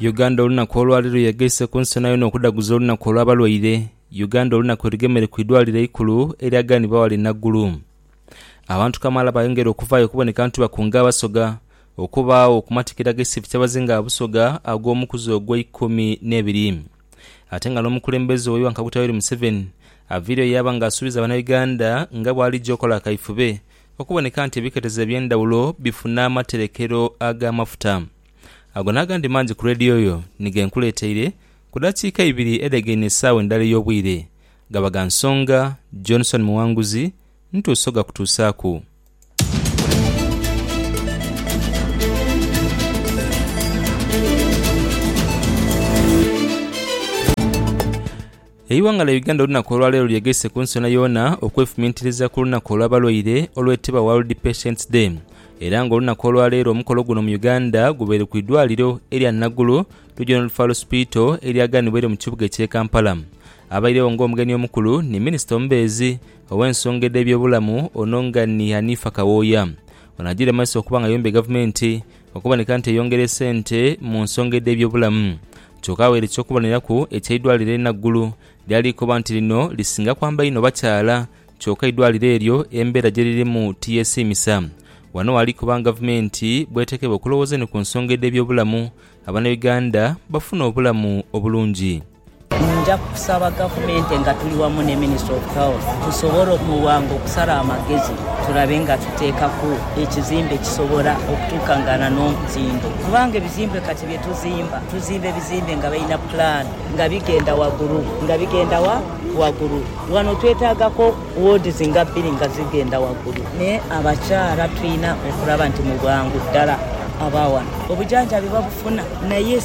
Uganda olunaku olwali luyegeise ku nsi yonayona okudaguza olunaku olw'abalwaire Uganda olunaku erugemeire ku idwaliro eikulu erya Gani Bawale Naggulu Abantu kamaala bayongera okuvaayo okuboneka nti bakunga Abasoga okubaagho ku matikira ag'ekisifu ky'abazinga ba Busoga ag'omukuzi ogw'eikumi n'ebiri ate nga n'omukulembeze owa Iwanga Kaguta Yoweri Museveni aviireyo yaaba nga asuubiza Banauganda nga bw'alija okola akaifube okuboneka nti ebiketezo eby'endhawulo bifuna amaterekero ag'amafuta. Ago n'agandi mangi ku leediyo yo ni ge nkuleeteire ku dakiika ibiri edhegaine esaawa endala ey'obwire. Gaba ga nsonga, Johnson Muwanguzi, ntuuse ogakutuusaaku. Eighanga lya Uganda olunaku olwaleero lyegaise ku nsi yoonayoona okwefumintiriza ku lunaku olw'abalwaire olwetebwa World Patients Day era nga olunaku olwaleero omukolo guno mu Uganda gubaire ku idwaliro erya Nagulu Regional Referral Hospital eryaganibwaire mu kibuga ekye Kampala. Abairegho nga omugenyi omukulu ni minister omubeezi ow'ensonga edh'ebyobulamu ono nga ni Hanifah Kawooya. Ono ajiire mumaiso okuba nga ayombye gavumenti okuboneka nti eyongera esente mu nsonga edh'ebyobulamu. Kyoka aghaire eky'okuboneraku eky'eidwaliro e Naggulu lyali likoba nti lino lisinga kwamba inho bakyala kyoka eidwaliro eryo embeera gye lirimu tiyesiimisa. Wano ghali koba nga Gavumenti bw'eteekebwa okulowooza ni ku nsonga edh'ebyobulamu, Abanauganda bafune obulamu obulungi. Nja kusaba Gavumenti nga tuli wamu ne Ministry of Health tusobole okulwanga okusala amagezi tulabe nga tuteekaku ekizimbe ekisobola okutuukangana n'omutindo kubanga ebizimbe kati bye tuzimba, tuzimba ebizimbe nga balina plan nga bigenda wagulu nga bigenda wa wagulu. Wano twetaagaku wards nga bbiri nga zigenda wagulu ne abakyala tulina okulaba nti mu bwangu ddala aba wano obujanjabi babufuna naye.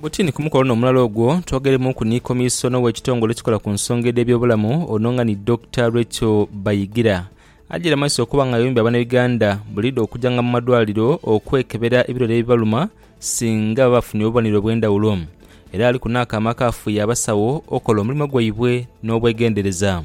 Butini ku mukolo ono omulala ogwo twogeremuuku ni Komisona ow'ekitongole ekikola ku nsonga edh'ebyobulamu ono nga ni Dokita Rachael Bayigira ajaire mu maiso okuba nga ayombya Abanauganda buliidho okujanga mu madwaliro okwekebera ebilwere ebibaluma singa baba bafunye obubonero obw'endhawulo era aliku n'akaama akaafuuya abasawo okola omulimo gwaibwe n'obwegendereza.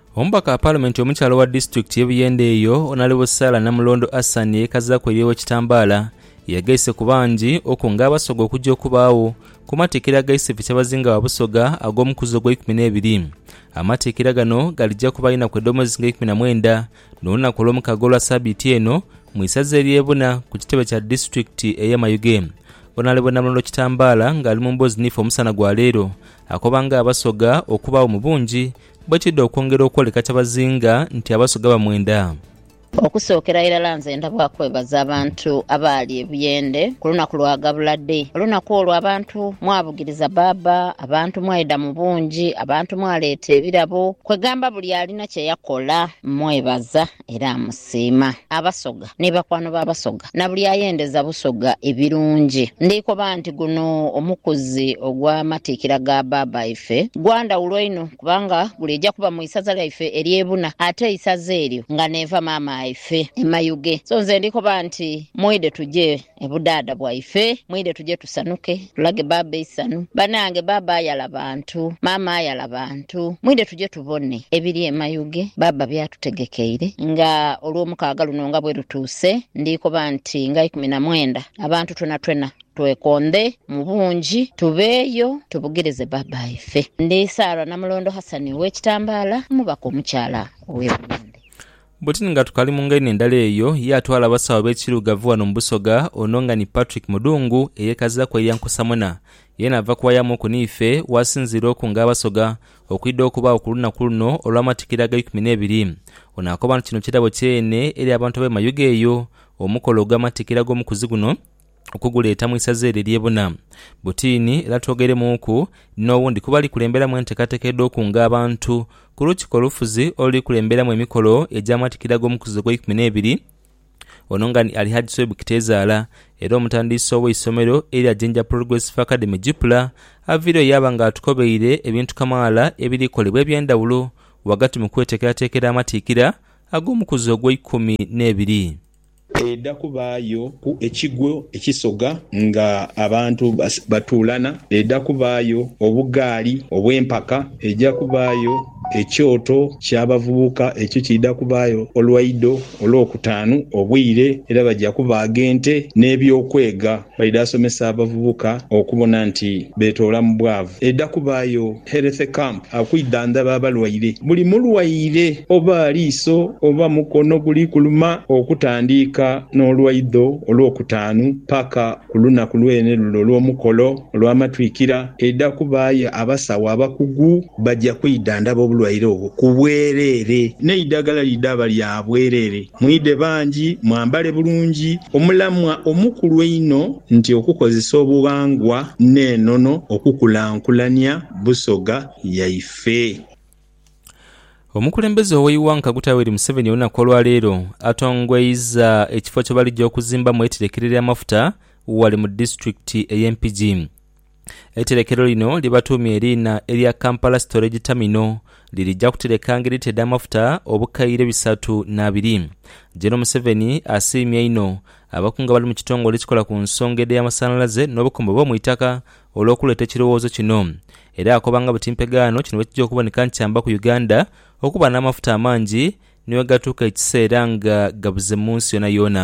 Omubaka wa Palamenti omukyala owa disitulikiti ye Buyende eyo Onalebo Sarah Namulondo Assan eyekazaaku erye Owekitambaala yegeise ku bangi okunga Abasoga okuja okubaagho ku matikkira agaise fi Kyabazinga wa Busoga ag'omukuzi ogweikumi nebiri. Amatikkira gano galija kuba inaku edhomwezi nga eikumi na mwenda nolunaku olwomukaga olwa sabiiti eno mu isaza erye Buna ku kitebe kya disitulikiti eye Mayuge. Onalebo Namulondo Kitambaala nga ali mu mboozi niife omusana gwa leero akoba nga Abasoga okubaagho mu bungi Bwe kidha okwongera okwoleka kyabazinga nti Abasoga bamwenda. Okusookera irala nze ndabwa kwebaza abantu abaali e Buyende ku lunaku lwa Gabula Day. Olunaku olwo abantu mwabugiriza bbaabba, abantu mwaidha mu bungi, abantu mwaleeta ebirabo, kwegamba buli alina kye yakola. Mmwebaza. era amusiima. Abasoga ni bakwano ba Basoga na buli ayendeza Busoga ebirungi. Ndikoba nti guno omukuzi ogw'amatiikira ga baaba ife gwa ndhawulo inho kubanga guliija kuba mu isaza lyaife ery'e Buna ate eisaza eryo nga n'eva maama aife e Mayuge. So nze ndikoba nti mwidhe tuje Ebudhaadha bwaife mwire tuje tusanuke tulage baaba eisanhu banange baaba ayala bantu maama ayala bantu mwire tuje tubone ebiri emayuge baaba byatutegekeire nga olwomukaaga luno nga bwerutuuse ndikoba nti nga ikumi na mwenda abantu twenatwena twekondhe mubungi tubeeyo tubugirize baaba waife. Ndi Sarah Namulondo Hassan owekitambaala omubaka omukyala owe Buwembe. Bwetuli nga tukali mu ngainho endala eyo, ye atwala abasawo b'ekiirugavu ghano mu Busoga ono nga ni Patrick Mudhungu eyekaziraku eya Nkusamwena, yeena ava kuwayamuuku n'ife wasinziira oku nga Abasoga okwidha okubaagho ku lunaku luno olw'amatikira ag'eikumi n'ebiri. Ono akoba nti kino kirabo kyene eri abantu ab'e Mayuge eyo omukolo ogw'amatikira ag'omukuzi guno, okuguleeta mu isaza eryo ery'e Buna Butiini era twogeiremuuku n'owundi kuba ali kulemberamu enteekateeka edh'okunga abantu ku Lukiiko Olufuzi oluli kulemberamu emikolo egy'amatikira ag'omukuzizo ogw'eikumi n'ebiri. Ono nga ni Alihaj Swaib Kitezaala era omutandiisi ow'eisomero erya Jinja Progressive Academy, JIPLA, avaireyo yaaba nga atukobeire ebintu kamaala ebiri kolebwa eby'endhawulo ghagati mu kweteekerateekera amatiikira ag'omukuzizo ogw'eikumi n'ebiri. Edha kubaayo ku ekigwo ekisoga nga abantu batuulana, edha kubaayo obugaali obw'empaka, eidha kubaayo ekyoto ky'abavubuka ekyo kiidha kubaayo olwaido olwokutaanu obwire, era baja kubaaga ente n'eby'okwega. Baidha asomesa abavubuka okubona nti betoola mu bwavu. Eidha kubaayo Health Camp okwidhandhaba abalwaire. Buli mulwaire oba aliiso oba mukono guli kuluma okutandiika n'olwaidho Olwokutaanu paka ku lunaku lwene lule olw'omukolo olw'amatwikira, eidha kubaayo abasawo abakugu baja kwidhandhaba obulwaire obwo ku bwereere n'eidhagala lidhaba lya bwereere. Mwidhe bangi, mwambale bulungi. Omulamwa omukulu einho nti okukozesa obughangwa n'enono okukulankulania Busoga yaife. Omukulembeze ow'eighangka Guta Yoweri Museveni olunaku olwaleero atongweiza ekifo kyebalija okuzimbamu eiterekero ery'amafuta ghale mu disitulikiti ey'e Mpigi. Eiterekero lino lye batuumye eriina erya Kampala Storage Terminal lirija kuterekanga elita edh'amafuta obukaire bisatu n'abiri. Gen Museveni asiimye inho abakungu abali mu kitongole ekikola ku nsonga edh'amasanhalaze n'obukombo bw'omu itaka olw'okuleeta ekirowoozo kino era akobanga buti mpegaano kino bwekija okuboneka nikyambaku Uganda okuba n'amafuta amangi niwegatuuka ekiseera nga gabuze mu nsi yoonayoona.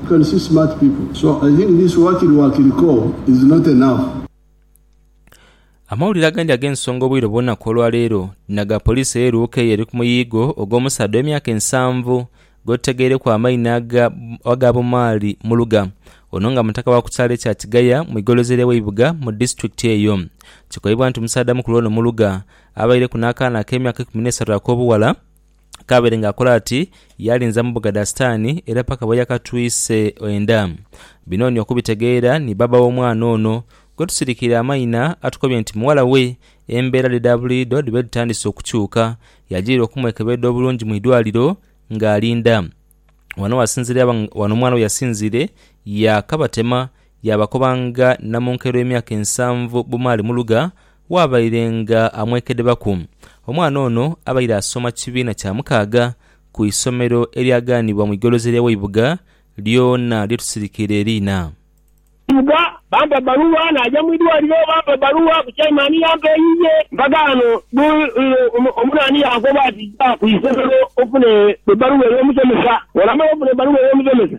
You can see smart people so I think this wakiri wakiri call is not enough. Amawulire agandi ag'ensonga obwire obw'olunaku olwaleero naga poliisi eye Luuka eyo eri ku muyiigo ogw'omusaadha ow'emyaka ensanvu gw'otutageireku amaina aga Bumaali Muluga ono nga mutaka wa ku kyalo ekya Kigaya mu igolozi ery'eweibuga mu disitulikiti eyo. Kikoibwa nti omusaadha mukulu ono Muluga abaireku n'akaana ak'emyaka ikumi n'esatu ak'obuwala. Kaabere ng'akola ati yaalinza mu bugada Sitaani era paka bwe yakatwise enda. Bino ni okubitegeera ni bbaabba w'omwana ono gwe tusirikiire amaina atukobye nti mughala we embeera dhe dha buliidho dhibe dhitandise okukyuka yajirira okumwekebeedha obulungi mu idwaliro ng'alinda. Wano wasinziire wano omwana we yasinziire yaakabatema Yaabakobanga namunkero emyaka ensanvu bumaali mu lugha, waabairenga amwekedebaku. Omwana ono abaire asoma kibiina kya mukaaga ku isomero eryagaanibwa mu igolozi ery'aweibuga lyona lye tusirikiire eriina. Eibuga, bampa ebbaluwa naaja mu idwaliro bampa ebbaluwa ku chaimani yampa eyiye. Mpaka ghano buli omuno ani yankoba ati ja ku isomero ofune ebbaluwa ey'omusomesa. Bw'onamala ofuna ebbaluwa ey'omusomesa,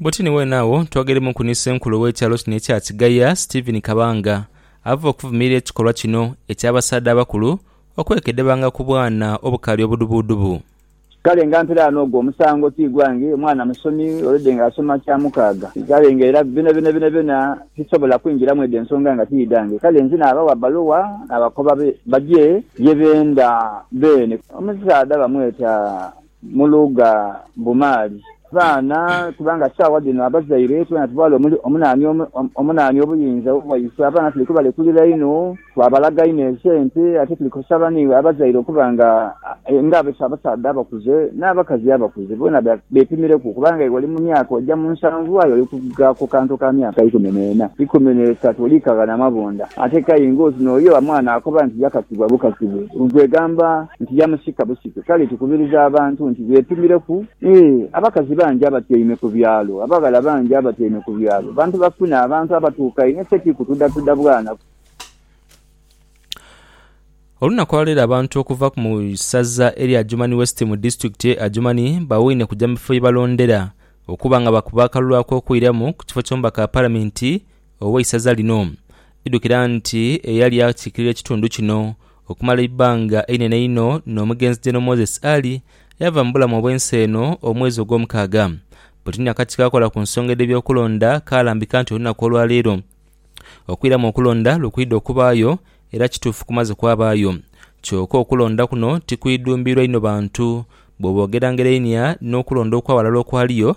Bwoti ni wenagho twogeremuku ni senkulu ow'ekyalo kino ekya Kigaya, Stephen Kabanga ava okuvumirira ekikolwa kino eky'abasaadha abakulu okwekedebanga ku bwana obukaali obudhubudhubu. Kale nga mpire ghano ogwo omusango ti gwange, omwana musomi already nga asoma kya mukaaga, kale nga era byonabyona sisobola kwingira mwedho ensonga nga ti dhange, kale nze naabawa bbaluwa naabakoba bagye ye benda beene. Omusaadha bamweta mu luga Mbumaali. Baana, kubanga saawa dhino abazaire twena tuvaala omunaani obuyinza bwaiswe, abaana tuli kubalekulira inho, twabalaga inho esente, ate tuli kusaba ni abazaire okuba nga abasaadha abakuze n'abakazi abakuze boona bepimireku kubanga iwe oli mu myaka oja mu nsanvu aye oli kuvuga ku kantu ka myaka ikumi n'ena, ikumi n'esatu oli kaghana mabunda ate kayi ng'oti n'oyo mwana akoba nti yakakibwa bukakibwe. Kwegamba. nti yamusika busike. Kale tukubiriza abantu nti beepimireku. Ee, abakazi bangi abatyaime ku byalo, abaghala bangi abatyaime ku byalo, bantu bafune abantu abatuuka inho, ffe ti kutudhatuda bwanaku. Olunaku olwaleero abantu okuva mu saza erya Adjumani West mu disitulikiti ye Adjumani bawuine kuja mu bifo yebalondera okuba nga bakuba akalulu akokuiramu ku kifo ky'omubaka wa palamenti Ow'eisaza lino idhukira nti eyali akiikirira ekitundu kino okumala eibbanga einene einho n'omugenzi General Moses Ali yaava mu bulamu obw'ensi eno omwezi ogw'omukaaga. Bwetini akakiiko akakola ku nsonga edh'ebyokulonda kaalambika nti olunaku olwaleero okwiramu okulonda lukwidha okubaayo era kituufu kumaze kwabaayo kyoka okulonda kuno tikwidhumbirwa inho bantu bwobogerangerainhia n'okulonda okwaghalala okwaliyo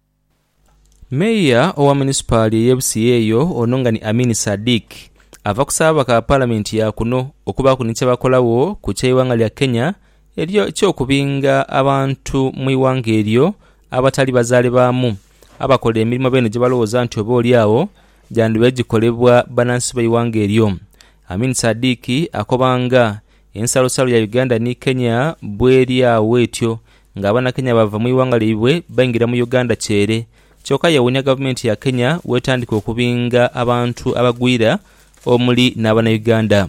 Meeya owa munisipaali ey'e Busia eyo ono nga ni Amin Sadiq ava kusaba ababaka ba Palamenti ya kuno okubaaku ni kyebakolagho ku ky'eighanga lya Kenya eky'okubinga abantu mu ighanga eryo abatali bazaale baamu abakola emirimo beene gyebalowooza nti oba oli agho gyandibaire gikolebwa banansi b'eighanga eryo. Amin Sadiq akoba nga. Ensalosalo ya Uganda ni Kenya bweri agho etyo nga Abanakenya baava mu ighanga lyaibwe baingira mu Uganda kyere kyoka yewuunya gavumenti ya Kenya bwetandika okubinga abantu abagwira omuli n'Abanauganda.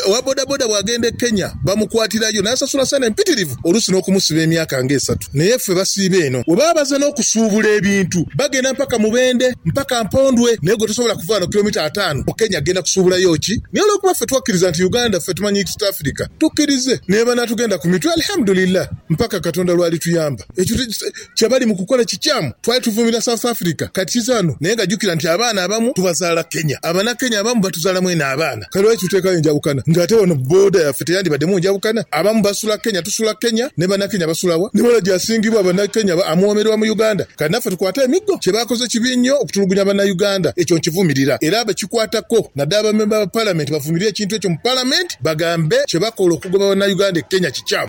Owa bodaboda bw'agenda e Kenya bamukwatirayo n'asasula sente mpitirivu. oluusi n'okumusiba emyaka nga esatu. Naye ffe basiiba eno. Bwe baba bazze n'okusuubula ebintu, bagenda mpaka Mubende, mpaka Mpondwe, naye gwe tosobola kuva ghano kilomita ataanu mu Kenya kugenda kusuubulayo ki? Naye olw'okuba ffe twakkiriza nti Uganda ffe tumanyi East Africa, tukkirize. Naye banaatugenda ku mitwe, Alihamudulillah, mpaka Katonda lw'alituyamba. Ekyo kye bali mu kukola kikyamu. Twali tuvumirira South Africa kati kizaanhu naye nga jukira nti abaana abamu tubazaala Kenya. Abanakenya abamu batuzaala mwene abaana. Kale lwaki tuteekayo enjawukana nga ate wano booda yaffe teyandibademu njawukana? Abamu basula Kenya, tusula Kenya, ne Banakenya basula wa? Ni waragi asingibwa Banakenya amuwoomererwa mu Uganda. Kati naffe tukwate emiggo? Kye baakoze kibi nnyo okutulugunya Bannayuganda. Ekyo nkivumirira era abakikwatako naddala bammemba ba Palamenti bavumirire ekintu ekyo mu Palamenti bagambe kye bakola okugoba Bannayuganda e Kenya kikyamu.